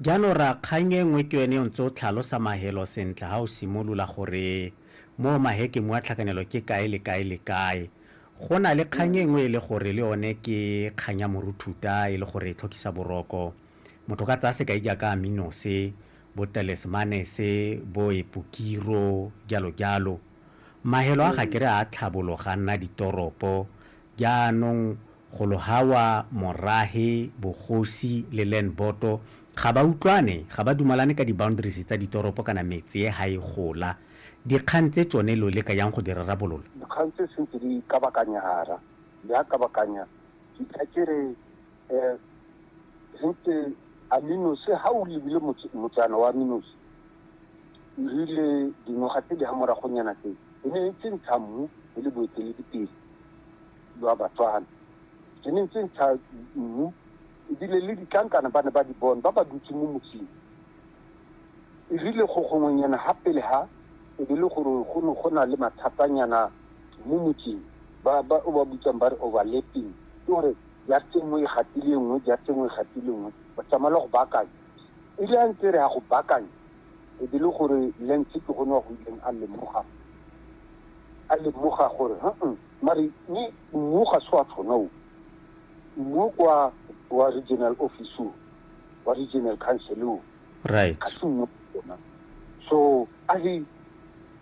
Jaanong ra kgang e nngwe ke yone o ntse o tlhalosa mahelo sentle ha o simolola gore mo mahekeng mwa tlhakanelo ke kae le kae le kae. Go na le kgang e nngwe e le gore le yone ke kgang ya moruthuta e le gore e tlhokisa boroko. Motho ka tsaya sekai jaaka Aminose, bo Telesmanese, bo Epokiro, jalo jalo. Mahelo a ga kere a tlhabologa a nna ditoropo, Jaanong golo hawa Morahe, Bogosi le Lenboto ga ba utlwane, ga ba dumalane ka di boundaries tsa ditoropo kana metsee ha e gola. Dikgang tse tsone lo leka yang go di rarabolola? Dikgang tse sentse di kabakanyara, di a kabakanya ke tla ke re sentse Aminosi ha o lebile motsana wa Aminosi e rile dingwaga tse di ha moragonyana tse e ne e tsentsha mmu e le boeteledipele jwa Batswana. E ne e tsentsha mmu ebile le ditlankana ba ne ba di bone ba ba dutse mo motseng. E rile go gongwenyana ga pele ga e be le gore go ne go na le mathatanyana mo motseng ba o ba bitsang ba re overlapping, ke gore jase nngwe e gatile e nngwe, jase nngwe e gatile e nngwe, go tsamaela go baakanya. E rile a ntse re ya go baakanya, E be e le gore Lance ke gone wa go ileng a lemoga, a lemoga gore haa, mare ni mmu ga se wa tshwana o. Mmu o kwa wa regional office o, wa regional council o. Right. Ga se mmu o ona. So a re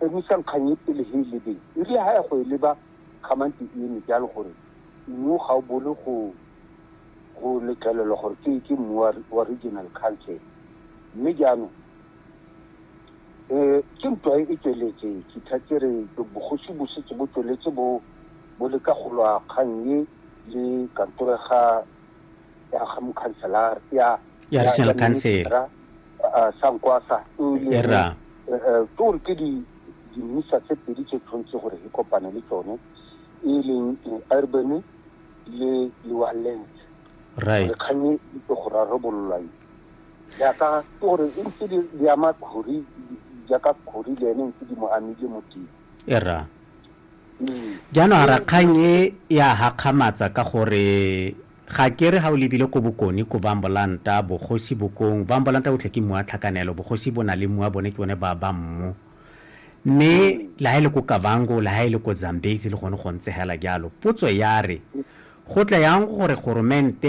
emisang kgang e pele he e lebeng. E rile ha ya go e leba, kgamante e eme jalo gore mmu ga o bole go go letlelelwa gore ke ke mmu wa wa regional council mme jaanong e ke ntwa e tsweletse ke thatse re bogosi bo setse bo tsweletse bo bo le ka go lwa kgang e le kantoro ga ya ga mokhanselara ya ya regional council sa nkwasa e ra ke gore ke di dimisa tse pedi tse tshwanetse gore e kopane le tsone e leng urban le di-wallet right gore kgang e itse go rarabololwang jaaka ke gore e ntse di di ama khori jaaka khori le ene ntse di mo amile mo teng e ra Mm. jaanong a rakgang e ya gakgamatsa ka gore ga ke re ga o lebile ko bokone ko bambolanta bogosi bokong bambolanta botlhe ke mmu wa tlhakanelo bogosi bo na le mmu wa bone ke bone ba ba mmu mme la ha e le ko kavango la ha e le ko zambezi le gone go ntse hela jalo potso ya re go tla yang gore goromente